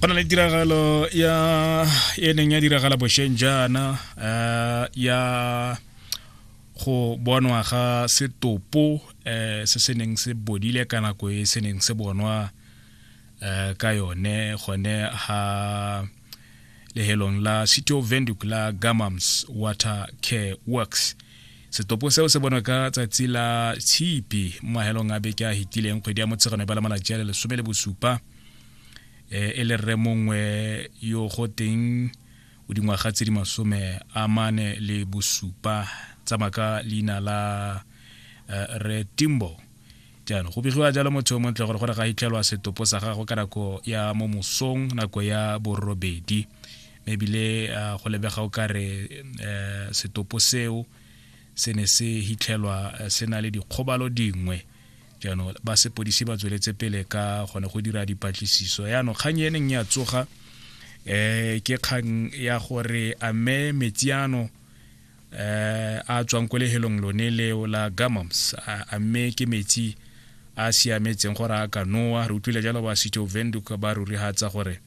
go na le tiragalo ya e neng ya diragala bosheng jaana um ya go bonwa ga setopo um se se neng se bodile ka nako e se neng se bonwa um ka yone gone ha lehelong la city of venduc la gamams water care works um setopo seo se bonwa ka tsatsi la tshipi mo mahelong a beke a hitileng kgwedi ya motshegano e ba la malatsi a le lesome le bosupa eh, e le rre mongwe yo go teng o dingwaga tse di masome a mane le bosupa tsamaka leina la eh, re timbo jaanong go begiwa jalo motho yo montle gore gore ga itlhelwa setopo sa gago ka nako ya mo mosong nako ya borobedi mme ebile ah, go lebega o kare um eh, setopo seo se ne se hitlhelwa eh, se na le dikgobalo dingwe jaanong ba sepodisi ba tsweletse pele ka gone go dira dipatlisiso yaanong kgang e neng ya tsoga um ke kgang ya gore a mme metsi ano eh, a tswang ko lehelong lone leo la gamams a mme ke metsi a siametseng gore a ka noa re utlwile jalo ba sitho venduka ba rurihatsa gore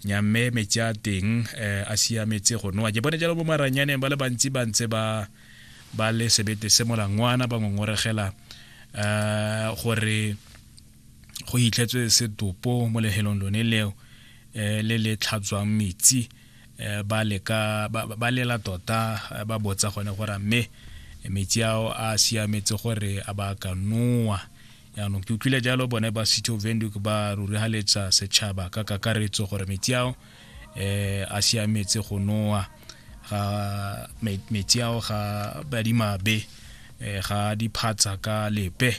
nyamme metsi a teng eh, a siametse go noa ke bone jalo bo maranyaneng ba le bantsi ba ntse ba ba le sebete se molangwana ba ngongoregela eh, gore go hitlhetswe setopo mo lehelong lone leo eh, le le tlhatswang metsi eh, ba leka ba lela tota eh, ba botsa gone gore a mme metsi ao a siametse gore a ba ka noa yaanong ke utlwile jalo bone ba city of venduk ba rurigaletsa setšhaba ka kakaretso gore metsi ao eh a siametse go noa ga metsi ao ga badimabe eh, ga diphatsa ka lepe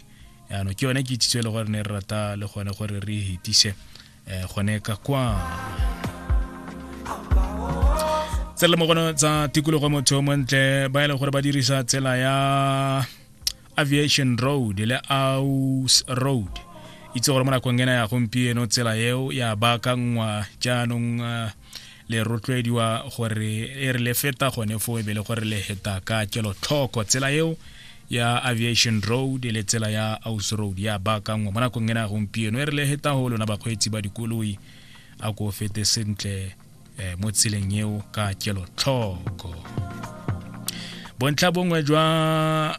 yaanong ke yone ke itsitso e le gore ne re rata le gone gore re e hetise eh, gone ka kwa tsela mogono tsa tikologo motho montle ba e leng gore ba dirisa tsela ya aviation road le aus road itse gore mo nakong ena ya gompieno tsela eo ya baakangwa jaanong uh, le rotloediwa gore e re le feta gone fo e be le gore le heta ka kelotlhoko tsela eo ya aviation road le tsela ya aus road ya baakangwa mo nakong ena gompieno e re le heta go lona bakgweetsi ba dikoloi a ko fete sentle eh, mo tseleng eo ka kelotlhoko bontlha bongwe jwa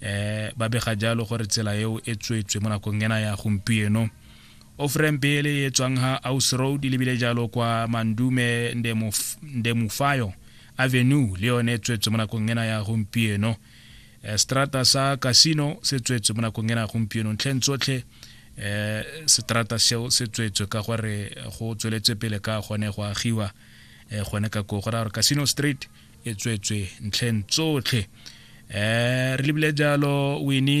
eh ba bega jalo gore tsela eo e tswetswe mo nakong ena ya gompieno ofrem pele e tswang ha aus road e lebile jalo kwa mandume ndemufayo avenue le yone e tswetswe mo nakong ena ya gompieno eh, strata sa casino se tswetswe mo nakong ena ya gompieno ntlheng tsotlhe eh setrata seo se tswetswe ka gore go tsweletse pele ka gone go agiwa eh, gone ka ko go ra gore casino street e tswetswe ntlheng tsotlhe um re lebile jalo wene